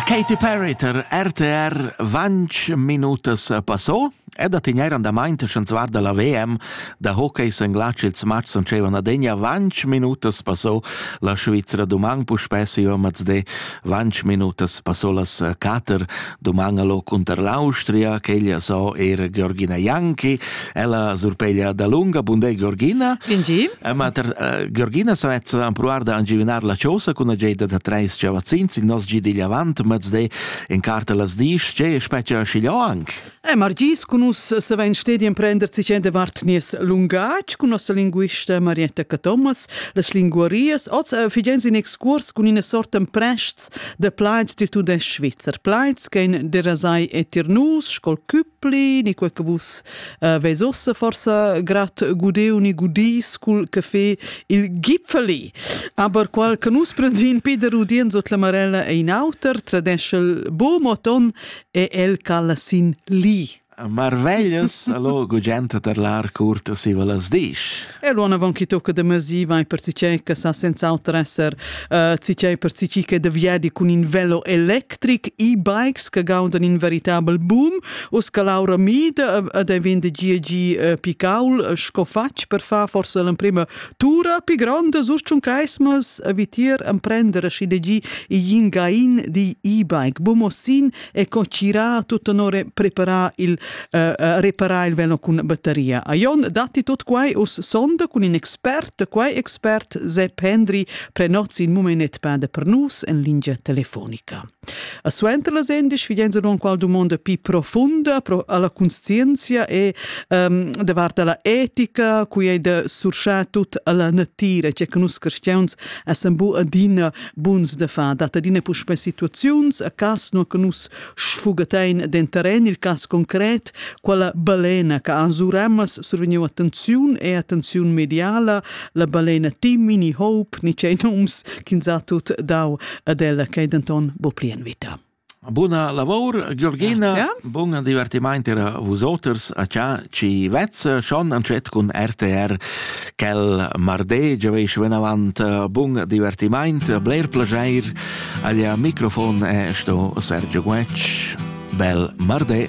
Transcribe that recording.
Katy Perry tar RTR vanch minutas passo e da tegnair andamaint sch'ans guarda la VM da hockey senglatsch ils matchs sun dschevan adegna vanch minutas passo la Svizra dumang puspè siva mazde vanch minutas passo las cater Doman allo cunter l'Austria, che ella so era Georgina Janki, ella surpeglia da lunga bundé Georgina. Ingi. Eh, ma ter, eh, Georgina sa vezza an pruar da angivinar la chosa cun ageda da treis chavazzins in nos gidi avant mezde in carta las dis, ce speccia schiglio anc. Eh, Margis cun us se vain stedi emprender cicen de vart nies lungatg cun nossa linguista Marietta Thomas, las linguarias, oz eh, figens in excurs cun ina sorta emprests de plaids ti tudest svizzer plaids ch'ein derasai e tier nus scol Küppli ni quei che vus uh, veis ossa forsa grat gudeu ni gudis cul caffè il Gipfeli aber qual che nus prendin Peter Udien sot la Marella e in auter tradeschel bo moton e el cala sin li Marveglias, allo gugenta per lar curta siva las disch. E lo anavon chi tocca da masi vai per sichè che sa senz'alter esser uh, sichè per sichì che da viedi cun in velo electric, e-bikes che gaudan in veritabel boom, u sca Laura Mid ed è vende gi uh, picaul uh, sco fatg per fa forse l'emprima tura pi gronda sus tschun caismas vitier emprendere schi de gi i yin gain di e-bike. Bomosin e co tgira tut onore preparar il uh, uh, reparar il velo cun batteria. A Jon datti tot quai us sonda cun in expert, quai expert se Pendri prenots in momenet pade per nus en lingia telefonica. A suenter las endisch figenza non qual domanda pi profunda pro alla conscienzia e um, davart alla etica, cui è de surschar tut alla natira, cioè che nus cristians essem bu adina Buns da far dat adina puspè situaziuns a cas nua che nus sfugatein denteren il cas concret, quella balena che ha suremas survegniu attenziun e attenziun mediala, la balena Timini Hope, ni tgei nums ch'ins ha tut dau ad ella, che denton bo pli en vita. Buna lavor, Georgina. Grazie. Bun divertimaint era vusoters a cha ci vezza schon an chat cun RTR quel mardi, giaveisch venavant eh, bun divertimaint, bler plageir. Aglia microfon è sto Sergio Guetsch. Bel mardi.